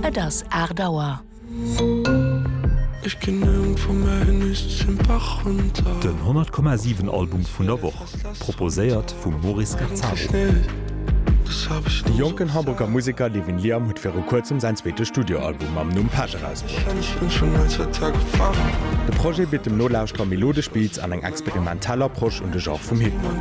Et ass aacht Auer. Den 100 Komma 7 Album vun der Woch, proposéiert vum Maurice Gazzaro. De jonken Hamburger Museker Levin Liam huet viru kuerzem säin zweete Studioalbum mam Numm Pech erausbruet. De Projet bitt dem Nolauschterer melodesch Beats an eng experimentell Soundfassung. Tell Approche un de Genre vum Hip-Hop.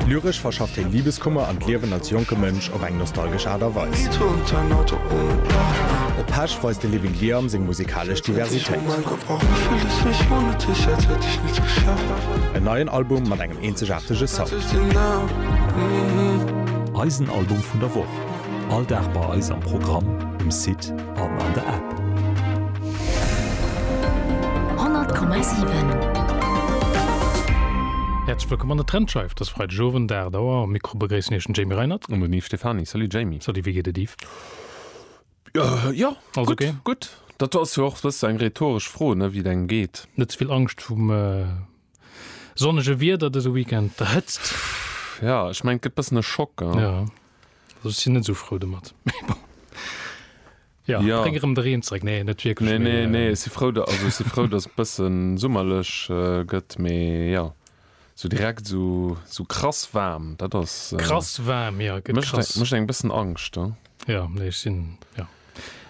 Lyresch verschafft hien Libeskummer an d'Liewen als jonke Mënsch op eng nostalgesch Aart a Weis. Op Pesch weist de Living Liam seng musikalesch Diversitéit. En neien Album mat engem eenzegaartege Sound. Eisen Album vun der Woch, all Dag bei eis am Programm, um Site. an an der App. 100,7. Häerzlech wëllkomm an der Trendscheif dës Freideg Owend 8 Auer. Am Mikro begréissen Iech den Jamie Reinert. An den Yves Stephany. Salut Jamie. Salut, wéi geet et Yves? Jo, Alles gutt, okay? gutt. Dat ass jo och e bësse eng rhetoresch Fro, ne, wéi et engem geet. Net ze vill Angscht vum. Sonnege Wieder dëse Weekend, der Hëtzt. Ja, ech mengen, et gëtt e bëssen e Schock. Ja. Ja, also ech sinn net esou frou domat. Mee bon. Ja, Ja. bréng erëm de Reen zréck. Nee, net wierklech. Nee, mee, nee, nee, äh, ech si frou, da- also ech si frou, dass et bëssen summerlech äh, gëtt, mee ja, so direkt so, so krass waarm, dat ass. Äh, Krass waarm, ja, gëtt Mëscht krass. eng, mëscht eng bëssen Angscht. Ja. Ja, nee, ech sinn, ja.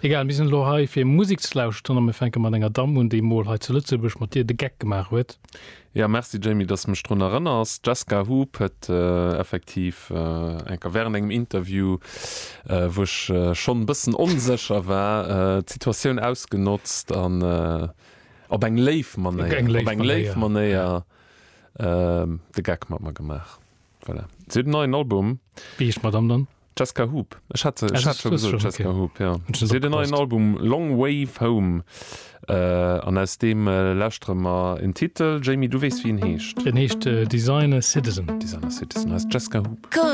Egal, mir sinn elo hei fir Musik ze lauschteren a mir fänke mat enger Damm un, déi mol hei zu Lëtzebuerg mat dir de Geck gemaach huet. Jo, merci Jamie, dass de mech drun erënners. D'Jessca Hoop huet effektiv eng Kéier während engem Interview, wou ech schonn e bëssen onsécher war, d'Situatioun ausgenotzt an op eng léif Manéier, op eng léif Manéier de Geck mat mer gemaach. Voilà. Si huet en neien Album. Wéi heescht d'Madame dann? D'Jessica Hoop. Ech hat se, ech hat scho gesot, d'Jessica Hoop, ja. Si huet en neien Album, Long Wave Home. An aus deem lauschtere mer en Titel. Jamie, du weess, wéi en heescht? En heescht Designer Citizen. Designer Citizen, hei ass d'Jessica Hoop.